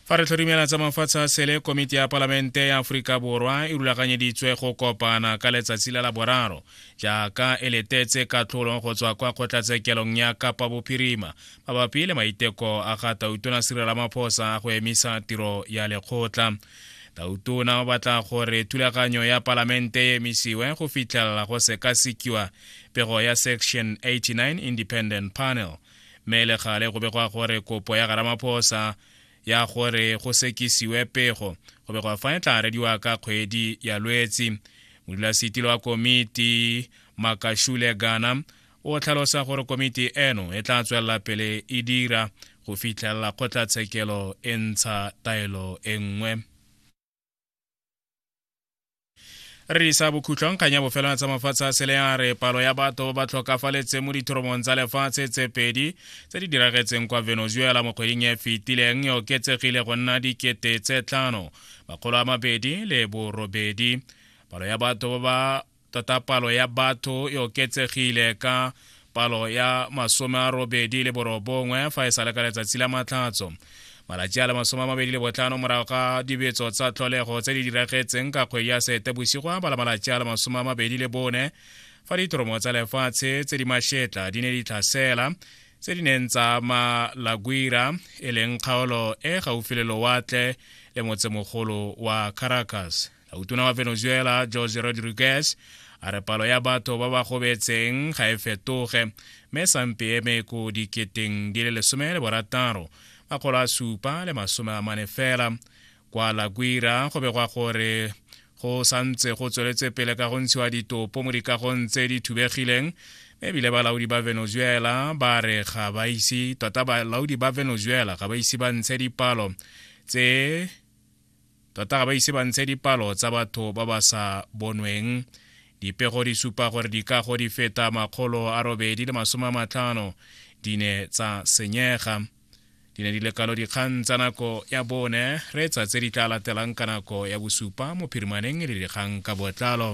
fa re tlhorimela tsa mafatshe a sele komiti ya palamente ya aforika borwa e rulaganyeditswe go kopana ka letsatsi la laboraro jaaka e letetse katlholo go tswa kwa kgotlatshekelong ya kapa bophirima mabapi le maiteko a ga tautona sirela maphosa a go emisa tiro ya lekgotla tautona o batla gore thulaganyo ya palamente e emisiwe go fitlhelela go sekasekiwa pego ya section 89 independent panel mme le gale go begwa gore kopo ya garamaphosa ya gore go sekisiwe pego go begwa fa e tla arediwa ka kgwedi ya lwetsi modulasetilo wa komiti makashule gana o tlhalosa gore komiti eno e tla tswelela pele e dira go fitlhelela kgotlatshekelo e ntsha taelo e nngwe re isa bokhutlong kgang ya bofelwana tsa mafatshe a sele ya re palo ya batho ba tlhokafaletseng mo dithoromong tsa lefatshe tse pedi tse di diragetseng kwa venezuela mo kgweding e fetileng e oketsegile go nna dikete tse tlhano makgolo a mabedi le borobedi palo ya batho ba ba tota palo ya batho e oketsegile ka palo ya masome a robedi le borobongwe fa e sa le ka letsatsi la matlhatso malatsi a le masome a mabedi le botlhano morago ga dibetso tsa tlholego tse di diragetseng ka kgwedi ya sete bosigo a bala malatsi a le masome a mabedi le bone fa ditoromo tsa lefatshe tse di mašetla di ne di tlhasela tse di neng tsa ma laguira e leng kgaolo e gaufi le lowatle le motsemogolo wa caracas utona wa venezuela jose rodriguez a re palo ya batho ba ba gobetseng ga e fetoge mme sampe eme ko diketeng di le lesome le borataro makgolo a supa le masome a mane fela kwa laguira go begwa gore go santse go tsweletse pele ka go ntshiwa ditopo mo dikagong tse di thubegileng ebile balaodi ba venezuela ba re ga ba ise tota balaodi ba venezuela ga ba ise ba ntshe dipalo tse tota ga ba ise ba ntshe dipalo tsa batho ba ba sa bonweng dipego di supa gore dikago di feta makgolo a robedi le masome a matlhano di ne tsa senyega di ne di le kalo dikgang tsa nako ya bone re tsa tse di tla latelang ka nako ya bosupa mo phirimaneng le dikgang ka botlalo